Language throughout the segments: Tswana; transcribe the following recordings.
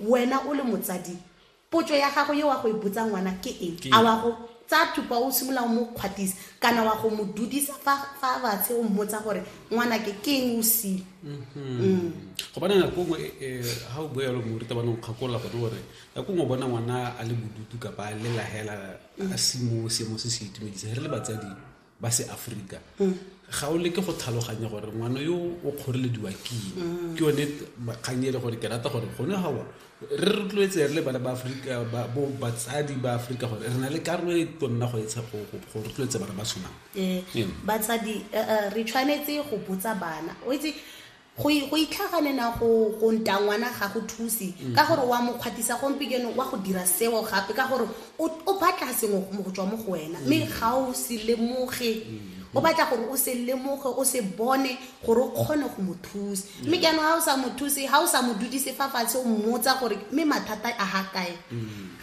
Wena o le motsadi, potso ya gago ye wa go e botsa ngwana ke eng? A wa go tsaya thupa o simolola o mo kgwatisa kana wa go mo dudisa fa fa batshe o mmotsa gore ngwana ke ke eng o sile? go bana nako nngwe eh, ha o bua yalo morutabana o kgakolola gone gore nako nngwe o bona ngwana a le bodutu kapa a lelahela a se mo seemo se se itumedisa re le batsadi ba seaforika ga o leke go tlhaloganya gore ngwana yo o kgorelediwa keng mm. ke yone kgang e le gore ke rata gore gone gawa re rotloetse re le bana ba aforika bo batsadi ba aforika gore re na le karolo e tonna go etsha go rotloetse bana ba tshwanang ee, batsadi eh, eh, re tshwanetse go botsa bana o itse go go itlhaganena go go nta ngwana ga go thuse mm. ka gore wa mokgwatisa gompikeno wa go dira seo gape ka gore o batla sengwe mo go tswa mo go wena mme mm. ga o se lemoge mm. o batla gore o se lemoge o se bone gore o kgone go mo thusa mme ke yanong ga o sa mo thuse ga o sa mo dudise fa fatshe o mmotsa gore mme mathata a ga kae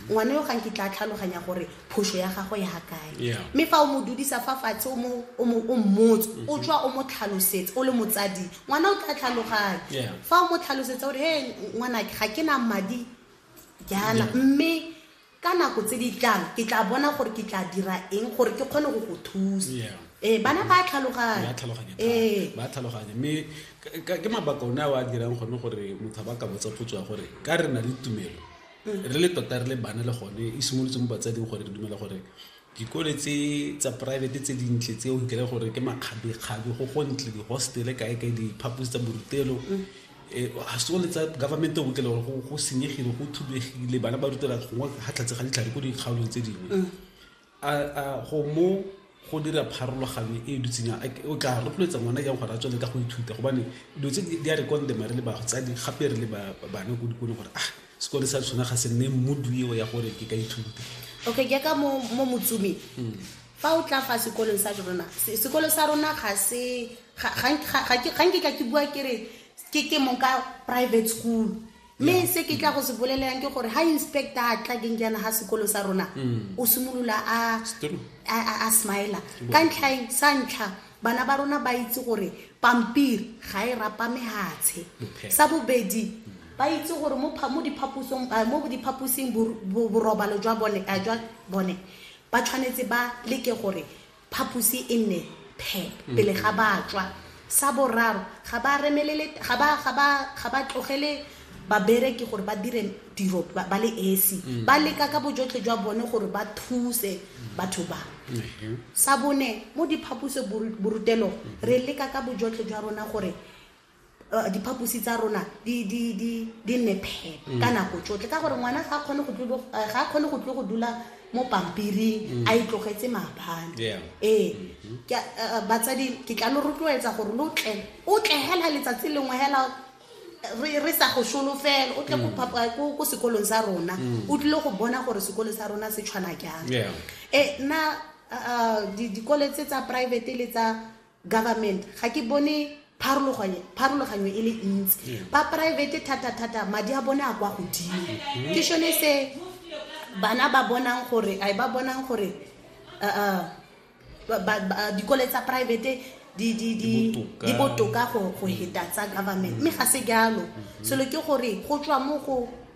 ngwana yo ga nkitla a tlhaloganya gore phoso ya gago ya kae mme fa o mo dudisa fa fatshe o mmotse o mm-hmm. tswa o mo tlhalosetse o le motsadi ngwana o tla tlhaloganya fa o mo tlhalosetsa gore he ngwanake ga ke na madi jaana mme ka nako tse di tlang ke tla bona gore ke tla dira eng gore ke kgone go go thusa ee bana ba tlhaloganya ee. ba tlhaloganya mme ke mabaka one a o a dirang gone gore motho ba ka botsa potso ya gore ka re na le tumelo re le tota re le bana le gone e simolotse mo batsading gore re dumela gore dikole tse tsa private tse dintle tse o nkele gore ke makgabekgabe go gontle di-hostele kae kae diphaposi tsa borutelo mm. eh, ga se le tsa government o nkele gore go senyegile go thubegile bana ba rutela gongwe ga tlhatse ga ditlhare ko dikgaolong tse dingwe mm. A go mo go dira pharologanyo e e dutseng yang? A ke- O tla rotloetsa ngwana jang gore a tswelele ka go ithuta? Gobane dilo tse di- di a re condemn-a re le batsadi gape re le ba- ba- bana ko dikolong gore ah sekole sa sona ga se nne mood eo ya gore ke ka ithuta. okay jaaka mo mo motsomeng fa o tla fa sekolong sa rona se- sekolo sa rona ga se ga- ga- ga- ga ke- ga nke ka ke bua ke re ke ke mong ka private school mme se ke tla go se bolelelang ke gore ha inspector a tla keng jaana ga sekolo sa rona mm. o simolola a smila ka ntlhaeng sa ntlha bana ba rona ba itse gore pampiri ga e rapa mehatshe sa bobedi mm. ba itse gore mo diphaposing borobalo jwa bone ba tshwanetse ba leke gore phaposi e nne phep mm. pele ga batswa sa boraro ga ba remelele ga ba ga ba ga ba tlogele babereki gore ba dire tiro ba le esi mm. ba leka ka bojotlhe jwa bone gore ba thuse batho ba mm-hmm. sa bone mo diphaposo borutelong mm-hmm. re leka ka bojotlhe jwa rona gore Eh, diphaposi tsa rona di nne phepa mm. ka nako tsotlhe ka gore ngwana ga a kgone go tlo go dula mo pampiring mm. a itlogetse maabane ee eh, mm-hmm. eh, batsadi ke tla lo rotloetsa gore lo tle o tle hela letsatsi lengwe hela re sa go solofela o tle go mm. sekolong sa rona o tlile go bona gore sekolo sa rona se tshwana jang e nna dikole tse tsa private le tsa government ga ke bone pharologanyo e le ntsi mm. ba private thata-thata madi a bone a kwa godimo mm-hmm. ke shone se bana ba bonang gore a ba bonang gore uh, uh, dikole tsa private di botoka go heta tsa government mme ga se jalo mm-hmm. selo ke gore go tswa mo go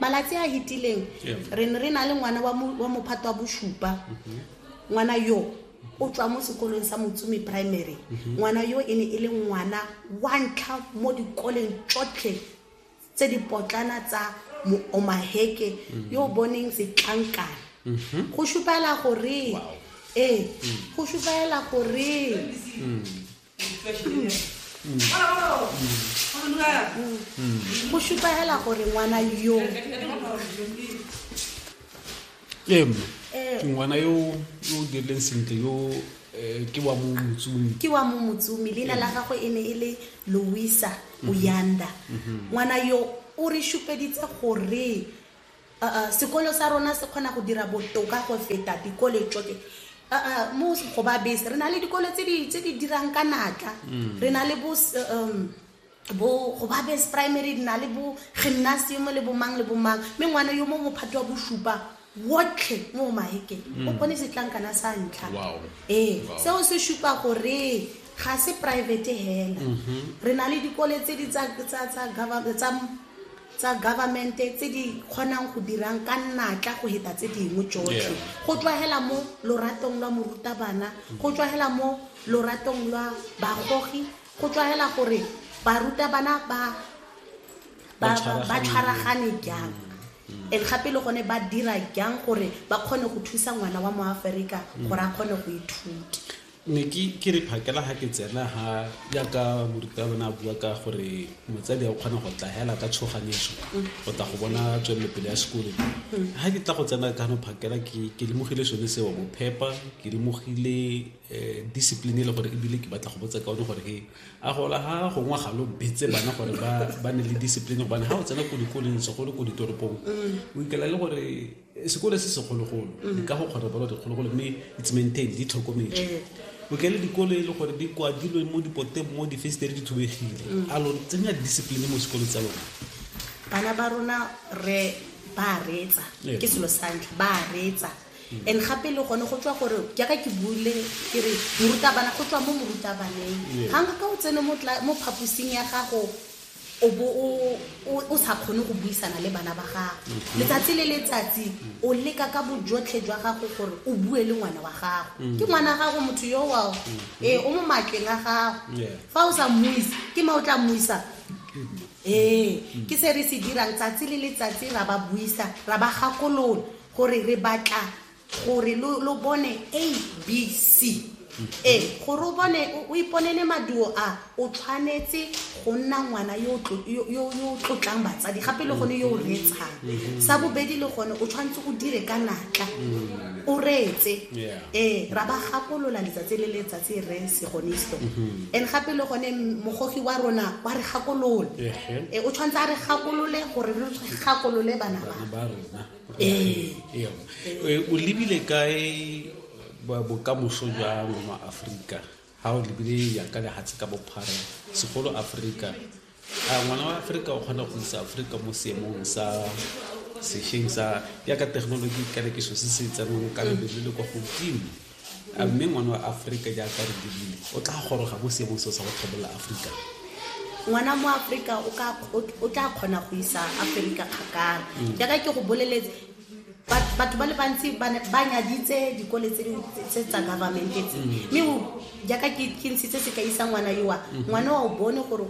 malatsi a hitileng re ne re na le ngwana wa mophato wa bosupa mhm. ngwana yo o tswa mo sekolong sa motsumi primary mhm. ngwana yo e ne e le ngwana wa ntlha mo dikoleng tsotlhe tse di potlana tsa omaheke mhm. yo o boneng setlankana go supela gore ee go supela gore go šupa fela gore ngwana yo ee mma ke ngwana yo yo o dirileng sentle yo eh, ke wa mo motsumi ke wa mo motsumi leina la gagwe e ne e le louisa oyanda ngwana yo o re šupeditse gore Aa sekolo sa rona se kgona go dira botoka go feta dikole tsote aa mo go ba bese re na le dikole tse di tse di dirang ka natla re na le bo s- um, bo go ba base primary re na le bo gymnasium le bo mang le bo mang mme ngwana yo mo mophato wa bosupa wotlhe mo mahekeng o bone setlankana sa ntlha Wow. ee Wow. seo se supa gore ga se private hela re na le dikole tse di tsa tsa tsa government tsa tsa government-e tse di kgonang go dirang ka natla go heta tse dingwe jotlhe go tlwagela mo loratong lwa morutabana go tlwagela mo loratong lwa bagogi go tlwagela gore barutabana ba ba tshwaragane jang mm. and gape le gone ba dira jang gore ba kgone go thusa ngwana wa moaferika gore a kgone go ithuta ne ke re phakela ga ke tsena ga yaka morutabone a bua ka gore motsadi a o kgona go tla hela ka tshoganetso go tla go bona tswelelopele ya sekolo ga ke tla go tsena kano phakela ke lemogile sone seo go phepa ke lemogile eh, discipline e le gore ebile ke batla go botsa ka one gore e a gola ga gongwe ga lo betse bana gore ba ne le discipline gobane ga o tsena ko dikoleng segolo ko ditoropong o ikela le gore sekole se segologolo dikago mm. kgotsa balo dikgologolo mme it's maintained di tlhokometswe eh. o kele dikolo e le gore di kwadilwe mo dipoteng mo difestere di thubegile mm. a lo tsenya discipline mo sekolo tsa lona bana ba rona re ba reetsa eh. ke selo sa ntlha ba reetsa mm. and gape le gone go tswa gore jaaka ke bule ke re morutabana go tswa mo morutabaneng ga nka ka o tsene mo phaposing ya gago o bo o sa kgone go buisana le bana ba gago mm-hmm. letsatsi le letsatsi o leka ka bojotlhe jwa gago gore o bue le ngwana wa gago mm-hmm. ke ngwana gago motho yo wa mm-hmm. ee o mo matleng a gago fa o sa mmuise ke ma o tla mmuisa ee ke se re se dirang tsatsi le letsatsi ra ba buisa ra ba gakolola gore re batla gore lo bone abc e gore o bone o iponele maduo a o tshwanetse go nna ngwana yo o tlotlang batsadi gape le gone yo o reetshang mm-hmm. sa bobedi le gone o tshwanetse go dire ka natla mm-hmm. o reetse ee ra ba gakolola letsatsi le letsatsi re segonisto mm-hmm. and gape le gone mogogi wa rona wa re gakolola ee o tshwanetse a re gakolole gore re gakolole bana ba ee. Ee. Ee, o lebile kae bokamoso jwa ma aforika ga o lebile ya ka lehatshe ka bophara segolo aforika a ngwana wa aforika o kgona go isa aforika mo seemong sa sešweng sa yaka technology ka rekiso se se tsenong ka lebelo le kwa godimo a mme ngwana wa aforika jaaka re dirile o tla goroga mo seemong seo sa go tlhabolola aforika ngwana mo aforika o tla kgona go isa aforika kgakala mm. jaaka ke go boleletse batho ba le bantsi ba nyaditse dikole tse tsa government tse mm. mme jaaka ke ntshitse se ka isa ngwana yoa mm. ngwana wa o bone gore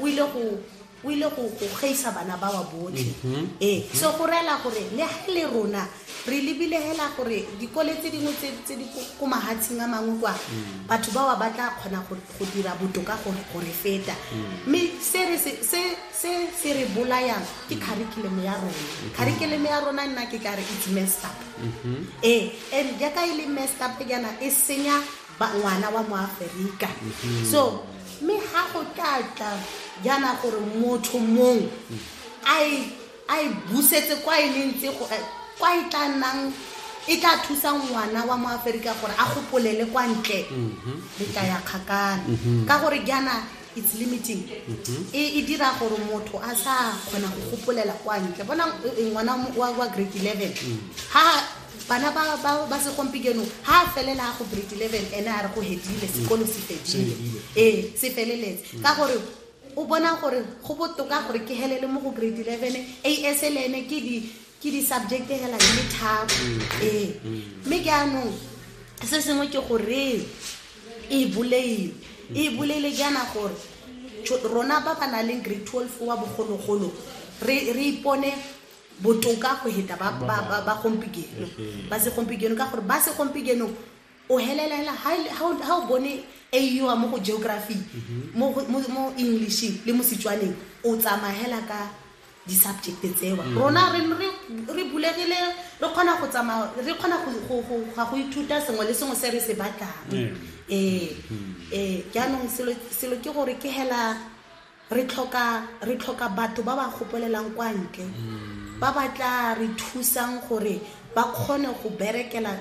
o ile go o ile go gaisa bana ba wa botlhe mhm. ee mhm. so go reela gore le ga le rona re lebile hela gore dikole tse dingwe tse di ko mahatsheng a mangwe kwa mm. batho ba wa ba tla kgona go dira botoka go re feta mm. mme se re bolayang ke curriculum ya rona mm-hmm. curriculum ya rona nna ke tla re it's messed up mm-hmm. ee and jaaka e le messed up jaana e senya ba ngwana wa moaferika so mme ga go tla tla jaana gore motho mongwe a e- a e busetse kwa e leng tse go- eh, kwa e tla nnang e tla thusa ngwana wa moaferika gore a gopolele kwa ntle le tla ya kgakana ka gore jaana it's limiting e e dira gore motho a sa kgona go gopolela kwa ntle bona eh, ngwana wa- wa wa grade 11 ha bana ba ba ba segompieno ha a felela go grade 11 ene a re go hedile sekolo se fedile ee se feleletse ka gore o bona gore go botoka gore ke helele mo go grade 11 as le ene ke di ke di-subject hela di le tharo mm-hmm. ee mm-hmm. mme ke anong se sengwe ke goreng e boleile e boleile ke ana gore rona ba ba nang leng grade twelve wa bogologolo re ipone botoka go heta ba ba ba ba gompigeno ba se gompigeno ka gore ba se gompigeno o helela hela ha ile- ha o- ha o bone a iwa mo go geography mo go- mo mo englishing le mo setswaneng o tsamaya hela ka di-subject tsewa rona re re re bulegile re kgona go tsamaya re kgona go- go go- ga go ithuta sengwe le sengwe se re se batlang Ee. ee ee jaanong selo selo ke gore ke hela Re tlhoka, re tlhoka batho ba ba gopolelang kwa ntle, ba ba tlaa re thusang gore ba kgone go berekela,